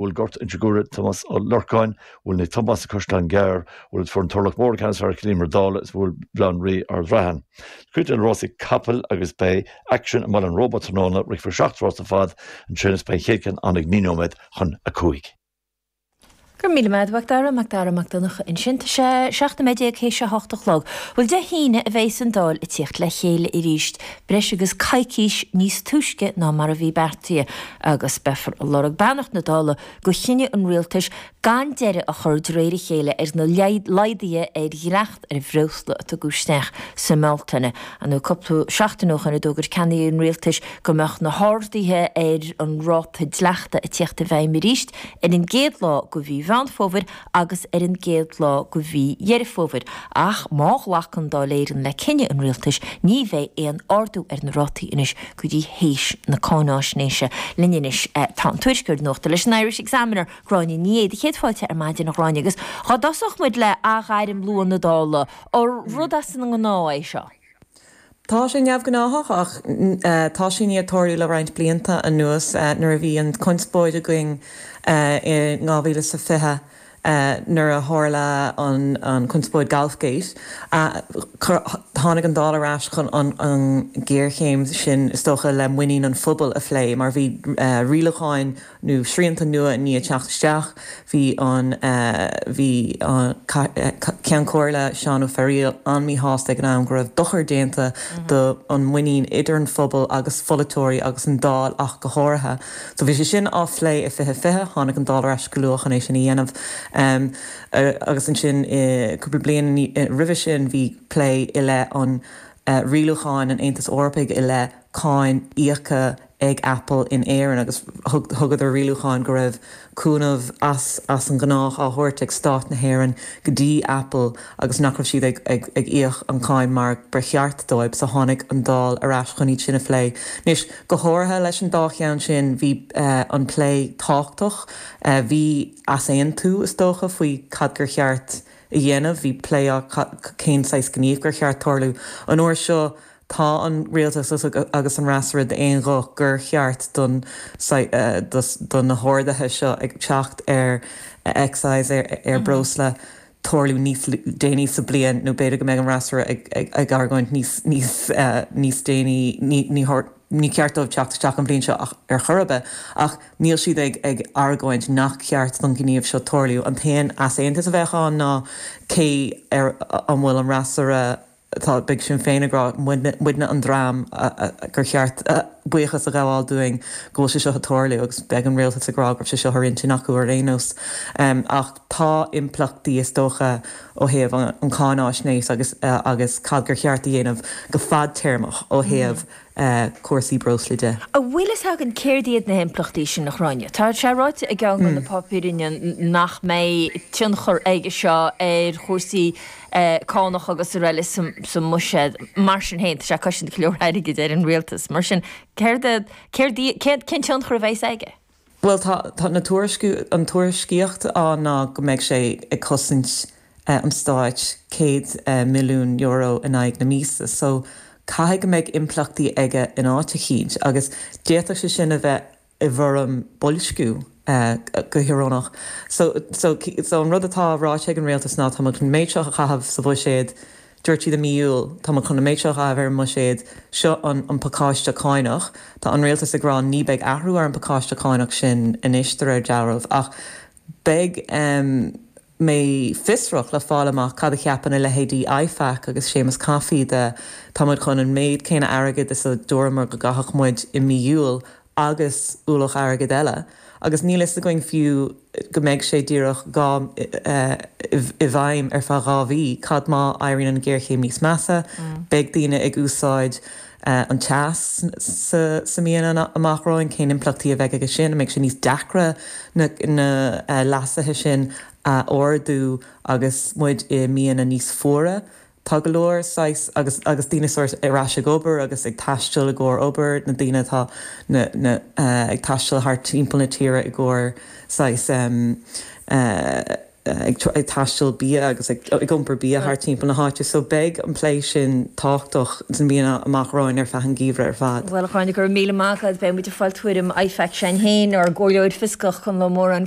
bhuail Gort Inse Guaire, Tomás Ó Lorcáin, bhuail Naomh Tomás, An Caisleán Gearr, bhuel fuair an Turlach Mór, an ceann is fearr ar Chill Íomair Dála, is bhuail Baile Átha an Rí, Ard Raithin. Cuid de na rásaí capall agus beidh action i mBaile an Róba tráthnóna, rithfear seacht rás ar fad ansin is beidh an chéad ceann ann ag naoi nóiméad chun a cúig. Go raibh míle maith agat a Mhacdara, Macdara Mac Donncha ansin. Tá sé seacht nóiméad déag théis a hocht a chlog. Bhuel Dé hAoine a bheas an Dáil ag tíocht le chéile arís, breis agus coicís níos túisce ná mar a bhí beartaithe. agus beifear ag lorg beannacht na Dála do chinneadh an Rialtais gan deireadh a chur de réir a chéile ar na laghduithe ar dhleacht ar bhreosla a tugadh isteach sa mBealtaine nó cúpla seachtain ó shin a d'fhógair ceannairí an Rialtais go mbeadh na harduithe ar an ráta dleachta ag tíocht i bhfeidhm arís ar an gcéad lá de mhí Mheán Fómhair agus ar an gcéad lá de mhí Dheireadh Fómhair, ach má ghlacann Dáil Éireann le cinneadh an Rialtais, ní bheidh aon ardú ar na rátaí anois go dtí th'éis na cáináisnéise. Linn anois tá an tuairisceoir nuachta leis an Irish Examiner, Gráinne Ní Aodha. Do chéad fáilte ar maidin, a Ghráinne, agus dhá dtosódh muid le athghairm luath na Dála, rud as an ngnáth é seo? Tá sé neamhghnáthach ach tá sé i ndiaidh tarlú le roinnt blianta anuas nuair a bhí an chonspóid againn i 2020 nuair a tharla an chonspóid Golfgate. Tháinig an Dáil ar ais chun an ghéarchéim sin is dócha le muinín an phobail a phlé mar bhí rialúcháin nó srianta nua i ndiaidh teacht isteach, bhí an Ceann Comhairle, Seán Ó Fearghaíl, an-mhíshásta ag an am go raibh dochar déanta do an muinín idir an phobal agus pholaiteoirí agus an Dáil ach go háirithe. So bhí sé sin á phlé i 2020, tháinig an Dáil ar ais go luath chun é sin a dhéanamh agus ansin cúpla bliain roimhe sin bhí plé i leith an rialúcháin an Aontais Eorpaigh i leith cáin íoctha ag Apple in Éirinn agus thugadar rialúcháin go raibh cúnamh as as an gnách á thabhairt ag stát na hÉireann go dtí Apple agus nach raibh siad ag íoc an cáin mar ba cheart dóibh so tháinig an Dáil ar ais chun iad sin a phlé. Anois go háirithe leis an dá cheann sin bhí an plé tábhachtach, bhí easaontú is dócha faoi cad gur cheart a dhéanamh, bhí plé ar cén saghas gníomh gur cheart tarlú. An uair seo Tá an Rialtas agus an fhreasúra d'aon ghuth gur cheart do na harduithe seo ag teacht ar excise ar breosla tarlú níos déanaí sa bliain nó b'fhéidir go mbeidh an fhreasúra ag argóint níos déanaí ní ceart dóibh teacht isteach an bhliain seo ar chor ar bith ach níl siad ag argóint nach ceart don ghníomh seo tarlú. An t-aon easaontas a bheadh ann ná cé air an bhfuil an fhreasúra Tá, beidh Sinn Féin ag rá, muidne, muidne an dream gur cheart buíochas a ghabháil dúinn go bhfuil sé seo ag tarlú agus beidh an Rialtas ag rá go raibh sé seo ar intinn acu ar aon nós. Ach tá impleachtaí is dócha ó thaobh an, an cáinfháisnéis agus, agus cad gur cheart a dhéanamh go fadtéarmach ó thaobh cúrsaí breosla de. An bhfuil fhios againn céard iad na himpleachtaí sin, a Ghráinne. Tá sé ráite i gceann de na páipéiríní nach mbeidh tionchar aige seo ar chúrsaí cánach agus araile sa mbuiséad. Mar sin féin, tá sé ag cosaint go leor airgid ar an rialtas. Mar sin, céard é, cén tionchar a bheas aige? Bhuel, tá, tá na tuairisciú, an tuairiscíocht ná go mbeidh sé ag cosaint an Stáit céad milliún euro in aghaidh na míosa so caithfidh go mbeidh impleachtaí aige in áit eicínt agus d'fhéadfadh sé sin a bheith i bhfoirm boilsciú go hiorónach. So, so, so an rud atá ráite ag an Rialtas ná tá muid chun an méid seo a chaitheamh sa bhuiséad, Dúirt siad i mí Iúil, Tá muid chun an méid seo a chaitheamh ar an mbuiséad, seo an an pacáiste cánach. Tá an rialtas ag rá ní beidh athrú ar an bpacáiste cánach sin anois de réir dealraimh, ach beidh mé fiosrach le fáil amach cad a cheapann a leithéidí IFAC agus Séamus Coffey de. Tá muid chun an méid céanna airgid a chaitheamh is a dúramar go gcaithfeadh muid i mí Iúil agus ualach airgid eile, agus níl fhios againn fiú go mbeidh sé díreach dhá i bhfeidhm ar feadh dhá mhí, cad má éiríonn an ghéarchéim níos measa, beidh daoine ag úsáid an teas sna míonna amach romhainn, cén impleachtaí a bheidh aige sin, an mbeidh sé níos deacra na leasuithe sin a ardú agus muid i míonna níos fuaire Tá go leor saghas agus agus daoine sórt ar ais ag obair agus ag taisteal i gcomhair obair, na daoine atá na na ag taisteal thart timpeall na tíre i gcomhair saghas ag ag taisteal bia agus ag ag iompar bia thart timpeall na háite. So beidh an plé sin tábhachtach sna míonna amach romhainn ar feadh an geimhreadh ar fad. Bhuel a Chuain, go raibh míle maith agat. Beidh muid ag fáil tuairim IFAC, Seán Heyn, an Chomhairle Fhioscach, chun lomh mórán